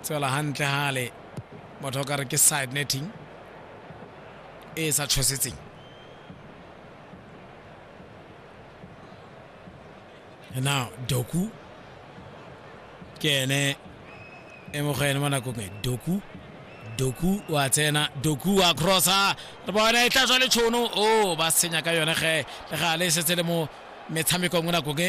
tswela hantle hale motho o ka re ke side netting e e sa tshosetseng now doku ke ene e mo go ene mo nakong e doku doku wa tsena doku wa crossa re bona e tla tswa le tshono o ba senya ka yone ge le ga le setse le mo metshamekong mo nakong e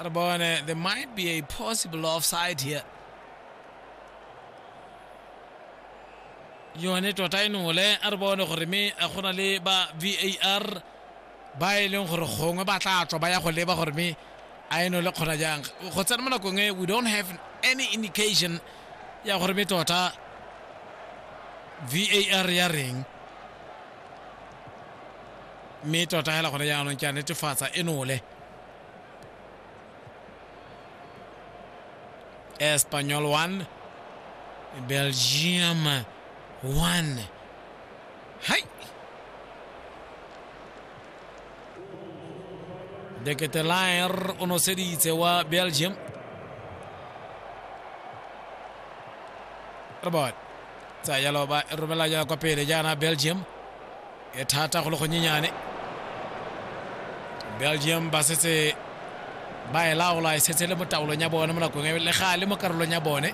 Arabone, there might be a possible offside here. yone tota e nole a re bone gore me a gona le ba var ba e leng gore gongwe ba tla tswa ba ya go leba gore me a eno le kgona jang go tsena mo nakong e we don't have any indication ya gore me tota var ya reng mme tota fela gone jaanong ke a netefatsa e nole espanyol 1 belgium 1 ¡Ay! De Ketelaer o noseditse wa Belgium. Robot. Tsa ya loba romela ya kwa pele jaana Belgium. E thata go le go nyenyane. Belgium ba setse ba e laola e setse le mo taolong ya bone mo nakong e le gale mo karolong ya bone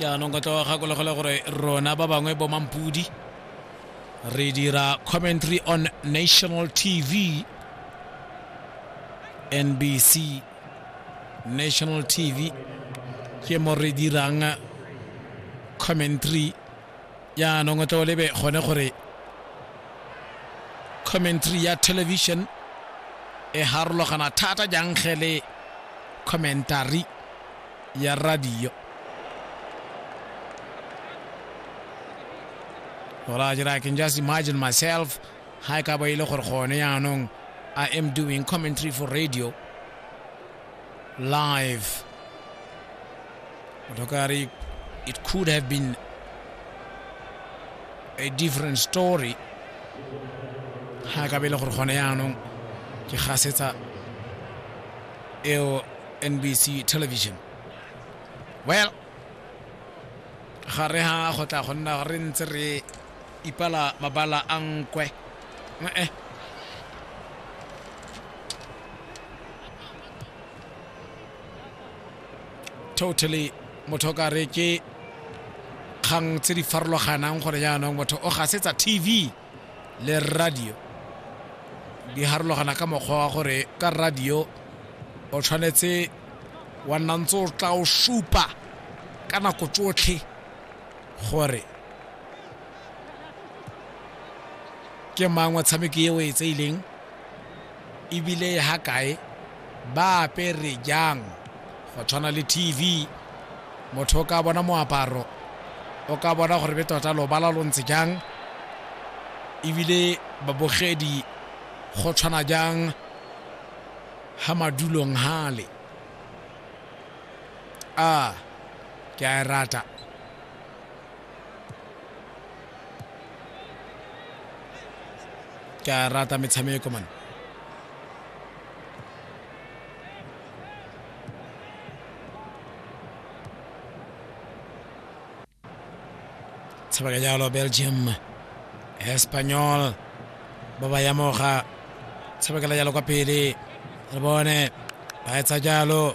jaanong ka tlo gakologole gore rona ba bangwe bo mampudi re dira commentary on national tv nbc national tv ke mo re dirang commentary yaanong o tle o lebe gone gore commentary ya television e harologana thata jang ge le commentary ya radio Alright, I can just imagine myself ha e ka ba ile gore gone yaanong I am doing commentary for radio live Motokari it could have been a different story ga ka bele gore gone yaanong ke gasetsa eo NBC television well ga re ha go tla go nna re ntse re ipala mabala a nkwe ee totally motho o ka re ke kgang tse di farologanang gore jaanong motho o gasetsa tv le radio di harologana ka mokgwa wa gore ka radio o tshwanetse wa nna ntse o tla o supa ka nako tsotlhe gore ke mang wa tshameko e o e tseileng ebile e ha kae ba apere jang go tshwana le tv motho o ka bona moaparo o ka bona gore be tota lobala lo ntse jang ebile babogedi go tshwana jang ha madulong hale ah, ke a e rata ke a e rata metshameko man tshabaka jalo belgium espanyol ba ba yamoga tshabakela jalo kwa pele re bone ba etsa jalo